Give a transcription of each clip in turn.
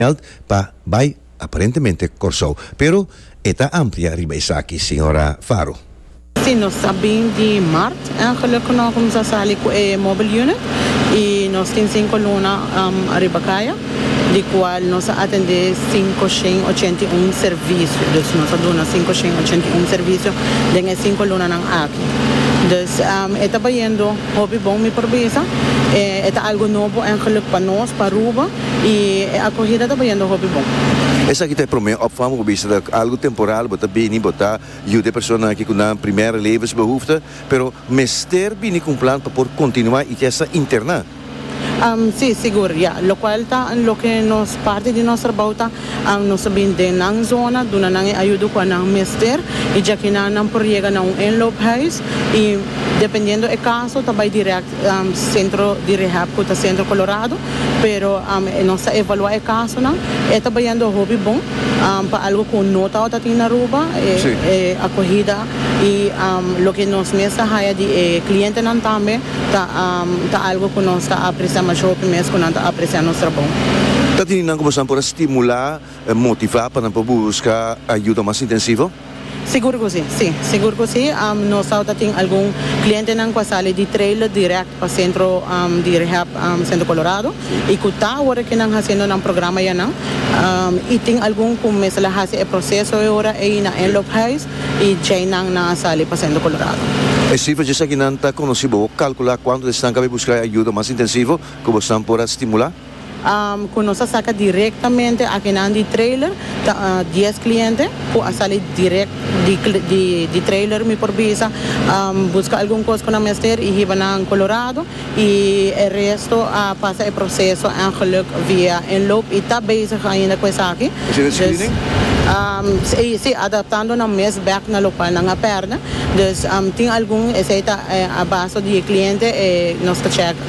Belt pa bai aparentemente Kòrsou, pero e ta amplia riba esaki, señora Faro. Sí, nos ta bin di Mart en geluk ku nos kuminsá sali ku e mobile unit i nos tin sinku luna riba kaya, di kual nos a atendé sinku shen ochenta i un servisio. Dus nos a duna sinku shen ochenta i un servisio den e sinku lunanan aki. Dus e ta bayendo hopi bon mi por bisa, e ta algu nobo en geluk pa nos, p'Aruba. Y e acogida ta bayendo hopi bon. Esaki ta e prome opvang bo bisa ta algo temporal, bo ta bini, bo ta yuda e personanan aki cu nan primera levensbehoefte, pero mester bini cu un plan pa por continua y kies ta interna. Si, sigur, ya. Locual ta loke nos parti di nos trabao ta nos ta bini den nan zona, duna nan e ayudo cua nan mester y djakinan nan por yega na un inloophuis y dependiendo e caso ta bay direct. Centro di Rehab cu ta Centro Colorado, pero nos ta evalua e casonan, e ta bayendo hopi bon pa algo cu no tabata tin na Aruba, e acogida y loke nos mes ta haya di e clientenan tambe ta algo cu nos ta aprecia masho hopi mes cu nan ta aprecia nos trabou. Ta tin nan cu boso nan por a stimula. motivá pa nan por busca ayuda mas intensivo? Sigur cu si, si. Sigur cu si. Nos awor ta tin algun clientenan cu a sali di trailer direct pa centro di rehab Centro Colorado y cu ta awor cu nan haciendo nan programa ya nan. Y tin algun cu mester la haci e proceso e ora ey na Anloop Huis y djey nan nan a sali pa Centro Colorado. E cifra dje esaki nan ta conoci. Bo calcula cuantu di esnan cu a busca ayuda mas intensivo cu bosnan por a stimula? Ku nos a saka direktamente akinan di trailer ta dies kliente ku a sali dirèk di trailer mi por bisa buska algun kos ku nan mester i hiba nan Colorado i e resto a pasa e proseso en geluk via inloop i ta bezig ainda ku esaki dus si adaptando nan mes bèk na lokual nan a pèrdè dus tin algun esei ta a baso di e kliente e nos ta chèka.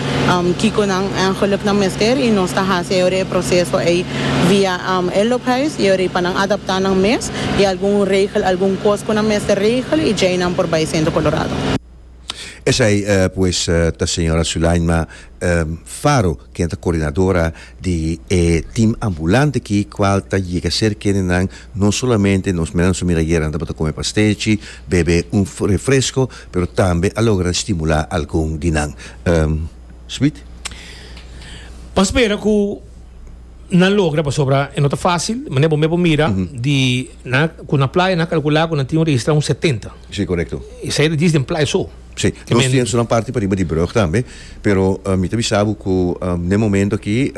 Kiko nan engeluk nan mester y nos ta haci ayora e proceso ey via e loophuis y ayora ey pa nan adapta nan mes y algun regel algun cos cu nan mester regel y djey nan por bay Centro Colorado. Esai pues ta señora Sulaima Faro ken ta coordinadora di e team ambulante aki cual ta yega cerca di nan no solamente nos menan su mira ayera nan tabata come pastechi bebe un refresco pero tambe a logra stimulá algun di nan. Smith. Bo a spera ku nan logra pasobra e no ta fásil. Manera bo mesmu a mira, di nan ku na playa nan a kalkulá ku nan tin un registrá un setenta. Sí, korekto. Esei ta djis den playa so. Sí, nos tien su nan parti pariba di brùg tambe. Pero mi ta bisa bo ku n'e momento aki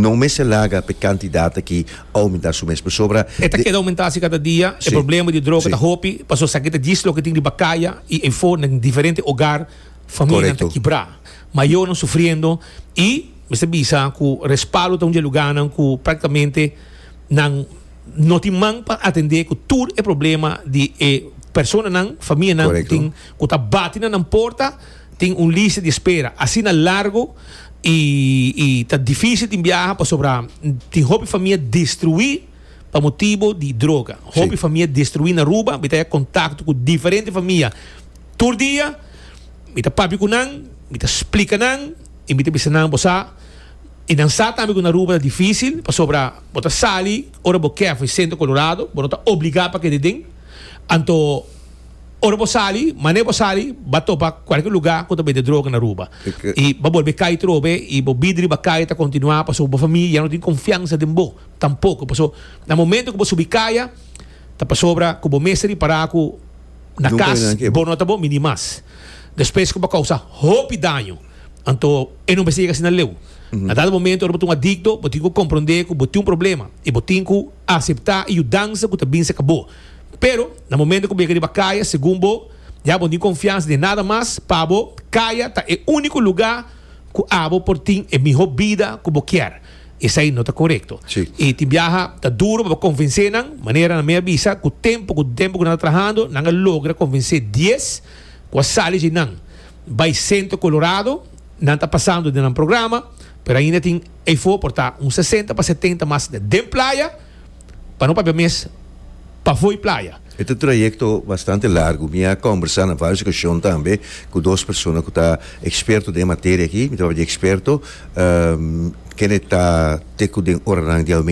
no mester laga p'e kantidat aki oumentá su mes pasobra. E ta keda oumentá si kada dia. E problema di droga ta hopi pasobra esaki ta djis loke tin riba kaya i efo den diferente ogar familianan ta kibrá, mayonan sufriendo i mester bisa ku respaldo ta un dje lugánan ku praktikamente nan no tin man pa atendé ku tur e problema di e personanan, famianan ku tin ku ta bati na nan porta. Tin un lista di espera asina largo i i ta dificil tin biaha pasobra tin hopi famia destrui pa motibo di droga. Sí. Hopi famia destrui na Aruba, mi ta ya contacto cu diferente famia tur dia, mi ta papia cu nan, mi ta splica nan i mi ta bisa nan bo sa i nan sa tambe cu na Aruba ta dificil pasobra bo ta sali ora bo kef e centro Colorado, bo no ta obliga pa keda den, anto. Ora bo sali, mane bo sali, ba topa kualke luga ku ta bende droga na Aruba. I ba bolbe kai trobe i bo bidri ba kaya ta kontinuá pasobra bo famia ya no tin konfiansa den bo tampoko. Paso na momento ku bo subi kaya ta pasobra ku bo mester ripará ku na kas bo no ta bo mini mas. Despues ku bo a kousa hopi daño, anto e no mester yega asina leu. Na dado momento ora bo ta un adikto bo tin ku komprondé ku bo tin un problema i bo tin ku aseptá e yudansa ku ta binse kabó. Pero, na momento ku bo yega riba kaya, segun bo, ya bo no tin konfiansa den nada mas. Pa bo, kaya ta e úniko lugá ku abo por tin e mihó bida ku bo kier. Esei no ta korekto. I tin biaha ta duru pa bo konvensé nan, manera nan mi a bisa ku tempu ku tempu ku nan ta trahando, nan a logra konvensé dies ku a sali dje nan bai Sento Kolorado. Nan ta pasando den nan programa, pero ainda tin eifo por ta un sesenta pa setenta mas den playa. pa no papia mes pafoi playa. E ta trayecto bastante largo. Mi a combersa na varios ocasion tambe cu dos persona cu ta experto den e materia aki. Mi tabata di experto. Kende ta te cu den oranan di Almeida.